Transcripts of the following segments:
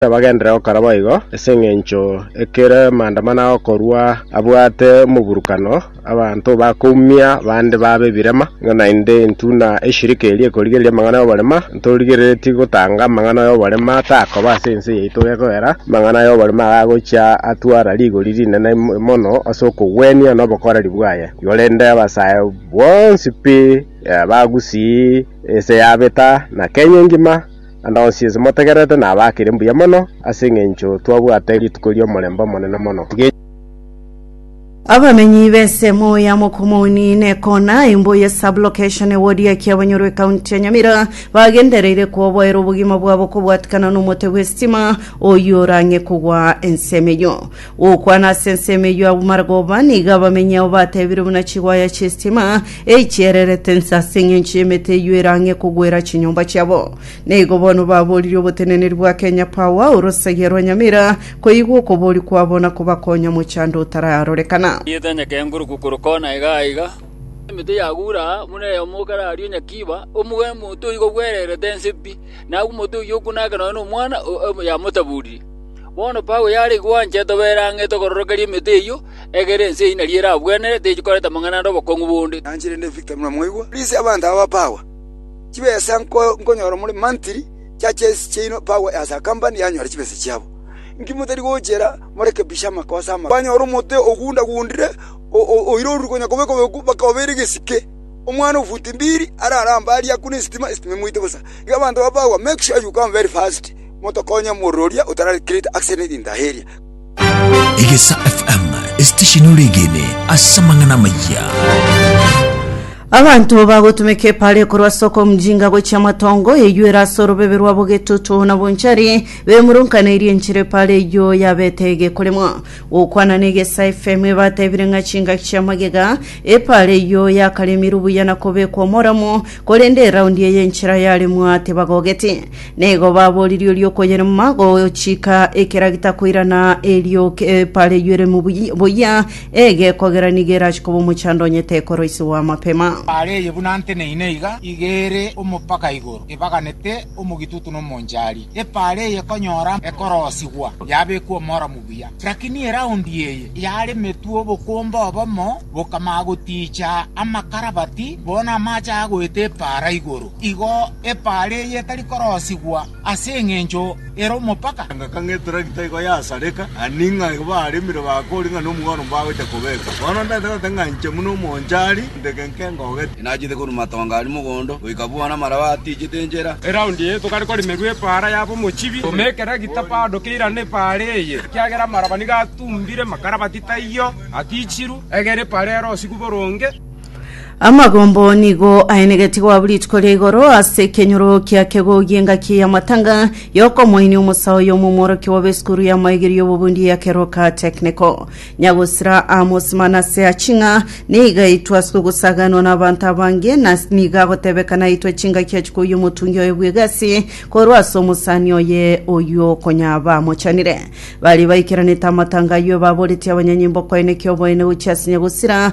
Bagenderere gokora boigo, ase engencho ekero amandamano agokorwa abwate omoburukano, abanto bakoumia bande babe ebirema, ng'a naende intwe na eshirika eria ekorigereria amang'ana y'oborema ntorigereretie gotanga amang'ana y'oborema takoba ase ense yaito gekoera, amang'ana y'oborema aya agochia atwara rigori rinene mono ase okogwenia na obokoreri bwaye. Igo rende abasae bonsi pi, abagusii, ense yabeta, na Kenya engima. Naende onsi ase motegererete nabakire mbuya mono, ase engencho twabwate rituko ri'omorembe omonene mono. Tiga Abamenyi b'esemo ya Mokomoni n'ekoona imbo ye sub-location e ward ya Kiabanyoro ekaunti ya Nyamira bagendereire koboera obogima bwabo kobwatikana n'omote bw'esitima oyio orang'e kogwa ensemo eyio. Gokwana ase ensemo eyio abwo Maragova nigo abamenyi ao batebire buna chigwaya chi'esitima eichiererete inse ase engencho y'emete eyio ere ang'e kogwera chinyomba chiabo. Nigo bono baboririe oboteneneri bwa Kenya Power orosagia rwa Nyamira koigwa okobori kwabo na kobakonya mochando otararorekana. Rieta nyake nguru gukuru kona iga aiga, emete yagura aa buna eyomo kare ario nyakiba, omogeni monto oyio kogwererete inse pi, na agwo omonto oyio okuna ake nonya nomwana, o- o- yamotaburirie. Bono Paulo yare gwancha etoba ere ang'e ete okororokeria emete eyio, egere ense eyio nari eragwenerete techikoreta amang'ana ande obokong'u bonde. Nanche rende Victor buna mwaigwa. Please abanto aba ba power chibesa nko nkonyora more monthly churches chiaino power as a company yanyora chibesa chiabo inki motari gochera morekebishe amakosa ama kwanyora omote ogunda gundire o o oire orure konya kobe kobe ku baka obere egesike omwana o futi mbiri arare ambari akune esitima esitima emoite bosa iga abanto ba power make sure you come very fast. Motokonye omorwori oria otarare Kirete ase rintaha eria. Egesa FM, esitesheni ore egene ase amang'ana amaya. Abanto bagotumeka epare korwa soko omujinga gochia matongo eyuere ase orobebe rwa bogetutu na bonchari bemurunkaneirie enchera epare eyio yabete egekoremwa gokwana na egesa fm ebatebire ng'a chingaki chia magega epare eyio yakaremirwe buya na kobekwa omoramo korende eraundi eye enchera yaremwa tebagogeti Nigo baboririe oria okoyerema gochika ekeragita koirana erio kepareyure mubuya- buya, egekogera nigo erache koba omochando onye tekoroisiwa amapema. Are eye buna nteneine iga, iga ere omopaka igoro, ebaganete omogitutu na omonchari. Epaara eye ekonyora ekorosigwa, yabekwa omoro mubuya. Rakini eraundi eye yaremetwe obokombe obomo, bokamaa gotiicha amakarabati, bono amache agoeta epaara igoro. Igo epaara eye etari korosigwa ase engencho ere omopaka. Engaka ng'a etragita igo yasareka, ani ng'a igo baremire bakori ng'a nomogwero mbagocha kobeka. Bono ntaete goteba ng'a inche buna omonchari, ndege inke ngogete. Inachete korwa matonga aria mogondo, goika buna amaraba atiichete enchera. Eraundi eye tokare koremerwa epaara yaba omochibi. Toma ekeragita bado keirane epaara eye, ekiagera amaraba nigo atumbire makarabati taiyo atiichirwe, egere epaara yarosigwe boronge. Amagombo nigo aenegetie goabwa rituko ria igoro ase ekenyoro kia kegogi engaki y'amatanga y'okomoini omosaho y'omomworokia obe esukuru y'amaegeri y'obobundi ya Keroka Technical. Nyagosira Amos Manase aching'a niga aitwe ase ogosaganwa n'abanto abange na niga agotebeka naitwe chingaki achikoyia omotungi oye bw'egasi korwa ase omosani oye oyio konyaba amochanire. Baria baikeranete amatanga ayio ebaboretie abanyanyimbo koenekia oboene gochia ase Nyagosira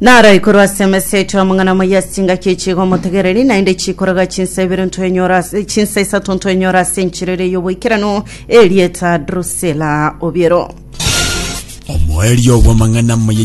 Naro ikorwa ase emesa yaito amang'ana amaya ase engaki echiga omotegereri, naende chikoroga chinsa ibere ntwenyora ase chinsa isato ntwenyora ase enchiriri y'oboikeranu erieta Drusila obiero. Omoerio bw'amang'ana amaya